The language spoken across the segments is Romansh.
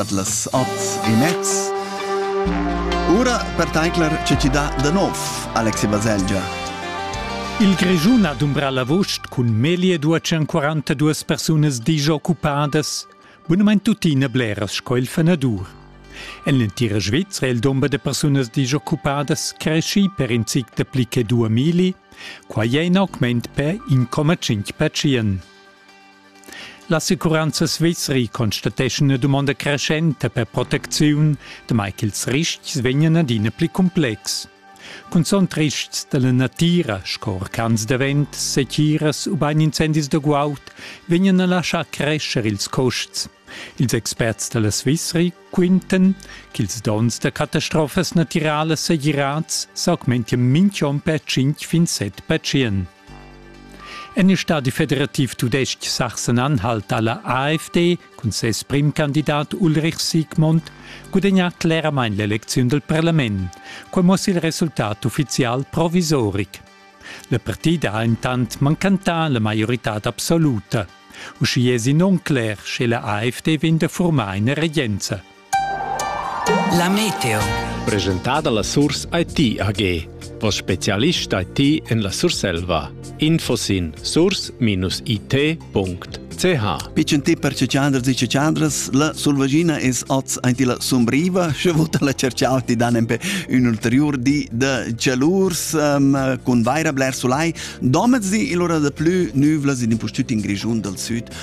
dat las ots e mezs. Ora per taincler ce ci dà da nov Alexi Baselgia. Il Grischun ha dumbra l'avost cun meglio 242 persunas disoccupadas. Bunament tuttina bleras sco il fenadur. En l'entira Svizzera il dumber de persunas disoccupadas cresci per in zic de pli che 2000, quai è in augment per 1,5 percent. L'assicuranza svizri constateschan ina dumonda creschenta per protecziun, damai ch'ils ristgs vegnan adina pli complexs. Cunzunt ristgs da la natira, sco orcans da vent, setiras ubain incendis da guaud, vegnan a laschar crescher ils custs. Ils experts da la Svizri quintan ch'ils donns da catastrofas natiralas segirads s'augmentian mintg'onn per 5 fin 7 percent. En il stadi federativ tudestg Sachsen-Anhalt ha la AfD cun ses primcandidat Ulrich Sigmund gudagnà cleramain l'elecziun dal parlament. Quai muossa il resultat uffizial provisoric. La partida ha intant mancantà la maioritad absoluta. Uschia èsi non cler, sche la AfD vegn da formar ina regenza. La meteo. Presentada la Surs IT AG, vos specialist IT en la Surselva. Info sin surs-it.ch Piccentè per cecciandras e cecciandras, la Sulvagina es oz aint la Sumbriva, sche vota la cerciau ti dan empe un ulterior di da cialurs um, cun vaira bler sulai. Domez di il ora da plü nüvlas in impustüt in Grischun dal Süd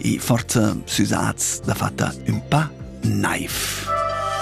e forza süsats da fatta ün pa naiv.